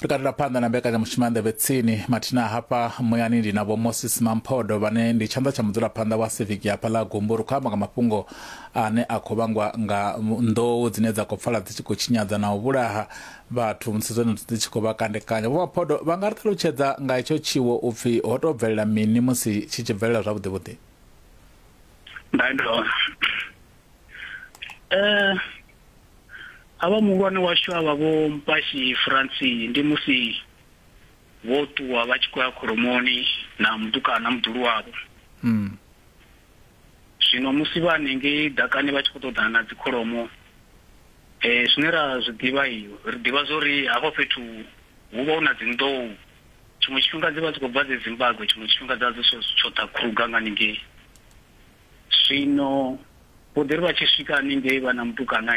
ri katela phanḓa na mbekanyamushumo ya nḓevhe tsini mathina hafha muyani ndi na vho moses mamphodo vhane ndi tshanḓa tsha mudzulaphanḓa wa civic hafha ḽa gumbu ri khou amba nga mafhungo ane a khou vhangwa nga nḓou dzine dza khou pfala dzi tshi khou tshinyadza na u vhulaha vhathu musi dzone dzi tshi khou vha kandekanya vho maphodo vha nga ri ṱalutshedza nga hetsho tshiwo u pfhi ho tou bvelela mini musi tshi tshi bvelela zwavhuḓi vhuḓi ndayo eh havha muhulwane washu avha vho mpashi franci ndi musi vho ṱuwa vha tshi khou ya khoromoni na mutukana muḓulu wavho mm. zwino musi vha hanengei ḓakani vha tshi khou ṱoḓana na dzikholomo um eh, zwine ra zwi ḓivha i ri ḓivha zwa uri hafha fhethu hu vha hu na dzinḓou tshiṅwe tshifhinga dzi vha dzi khou bva dze zimbabwe tshiṅwe tshifhinga dza dzi tsho ḓa kruga nga ningei Zwino vho ḓiri vha tshi swika haningei vha na mutukana,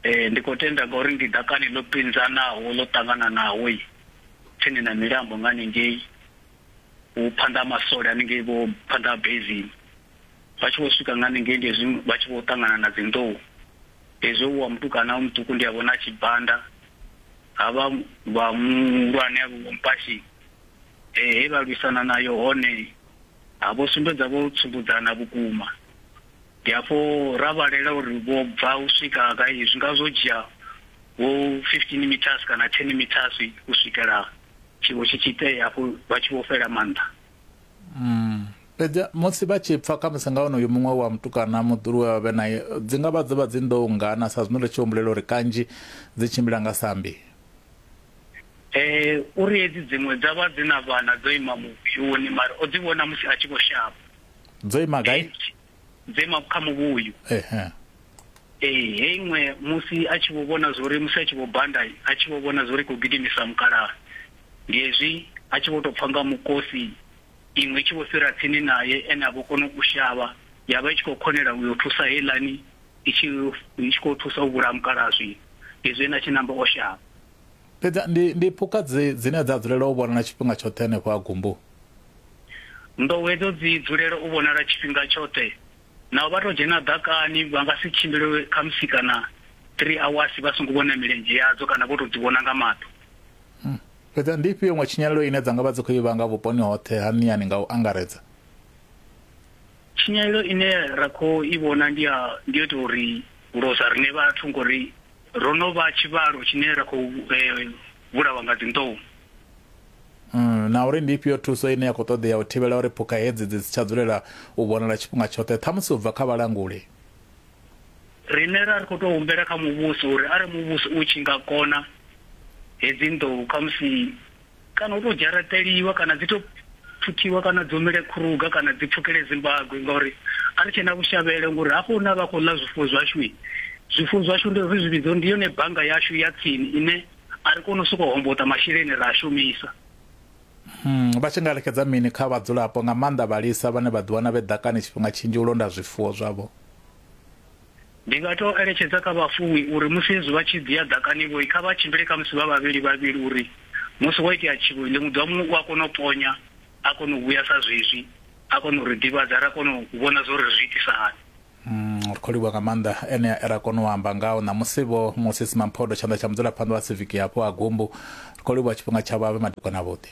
Ee, ndi khou tenda ngauri ndi ḓakani ḽo pinzanaho ḽo ṱangananaho tsini na milambo nga haningei vhu phanḓa ha masole haningei vho phanḓa ha Bezimi. Vha tshi vho swika nga haningei ndi hezwi vha tshi vho ṱangana na dzinḓou, hezwi wa mutukana muṱuku ndi a vhona a tshi banda, havha vha muhulwane havho vho mupashini, Ee, he vha lwisana nayo hone. Ha vho sumbedza vho tsumbudzana vhukuma. Ndi hafho ra vhalela uri vho bva u swika gai, zwi nga zwo dzhia vho 15 metres kana 10 metres u swikela tshiwo tshi tshi itea hafhu vha tshi vho fhela maanḓa. Fhedzi musi vha tshi pfa khamusi nga onoyo muṅwe wa mutukana muḓulu we vha vhe nae, dzi nga vha dzo vha dzi nḓou nngana sa zwino ri tshi humbulela uri kanzhi dzi tshimbila nga sambi. Eh, uri hedzi dziṅwe dza vha dzi na vhana dzo ima muvhuyuni, mara o dzi vhona musi a tshi vho shavha. Dzo ima gai? Hei nthihi dzo ima kha muvhuyu. Ehe. Ee, hei iṅwe musi a tshi vho vhona zwori musi a tshi vho banda, a tshi vho vhona zwori i khou gidimisa mukalaha. Ndi hezwi a tshi vho tou pfa nga mukosi, iṅwe i tshi vho fhira tsini nae, ene a vho kona u shavha, ya vha i tshi khou khonela u yo thusa heiḽani i tshi i tshi khou thusa u vhulaya mukalaaswi izwi ene a tshi namba o shavha. Fhedzi ndi ndi phukha dzi dzine dza dzulela u vhonala tshifhinga tshoṱhe henefho ha gumbu. Nḓou hedzo dzi dzulela u vhonala tshifhinga tshoṱhe naho vha tou dzhena ḓakani vha nga si tshimbile khamusi kana 3 awasi vha songo vhona milenzhe yadzo kana vho tou dzi vhona nga maṱo. Fhedzi ndi ifhio iṅwe tshinyalelo ine dza nga vha dzi khou i vhanga vhuponi hoṱhe ha Niyani nga u angaredza? Tshinyalelo ine ra khou i vhona ndi ya ndi yo tou ri losa riṋe vhathu ngori ro no vha tshivhalo tshine ra khou vhulawa nga dzinḓou. Na uri ndi ifhio thuso ine ya khou ṱoḓea u thivhela uri phukha hedzi dzi si tsha dzulela u vhonala tshifhinga tshoṱhe, ṱhamusi u bva kha vhalanguli? Riṋe ra ri khou tou humbela kha muvhuso uri arali muvhuso u tshi nga kona hedzi nḓou khamusi Kana u tou dzharaṱeliwa kana dzi tou pfuthiwa kana dzi humele khuruga kana dzi pfukele Zimbagwe ngauri a ri tshena vhushavhelo ngori hafho hune a vha khou ḽa zwifuwo zwashu zwifuwo zwashu ndi ri zwi vhidza ndi yone bannga yashu ya tsini ine a ri koni u sokou homboḓa masheleni ra a shumisa. Vha tshi nga lexedza mini kha vhadzulapo nga maanḓa vhalisa vhane vha ḓiwana vhe ḓakani tshifhinga tshinzhi u londa zwifuwo zwavho? Ndi nga tou eletshedza kha vhafuwi uri musi hezwi vha tshi ḓia ḓakani-vho, kha vha tshimbile khamusi vha vhavhili-vhavhili uri musi ho itea tshiwo, ḽiṅwe ḓuvha muṅwe u a kona u ponya a kona u vhuya sa zwezwi a kona u ri ḓivhadza ra kona u vhona zwa uri ri zwi itisa hani. Umm, ri khou livhuwa nga maanḓa enea e ra kona u amba ngao ṋamusi-vho. Moses Mamphodo, Tshanḓa tsha Mudzulaphanḓa wa Siviki yapo Ha Gumbu, Ri khou livhuwa tshifhinga tshavho a vhe madekwana avhuḓi.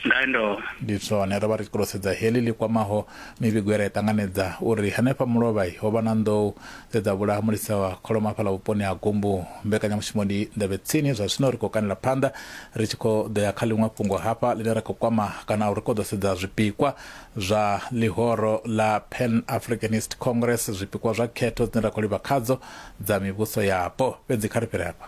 Ndondolo. Ndi zwone, ro vha ri tshi ṱoḓa u sedza heḽi ḽi kwamaho mivhigo ye ra i ṱanganedza uri hanefha Mulovha ho vha na nḓou dze dza vhulaha mulisa wa kholomo hafhaḽa vhuponi ha Gumbu. Mbekanyamushumo ndi nḓevhe tsini, zwa zwino ri khou kanela phanḓa ri tshi khou ḓo ya kha ḽiṅwe fhungo hafha ḽine ra khou kwama kana ri khou ḓo sedza zwipikwa zwa ḽihoro ḽa Pan Africanist Congress, zwipikwa zwa khetho dzine ra khou livha khadzo dza mivhuso yapo. Fhedzi kha ri fhire hafha.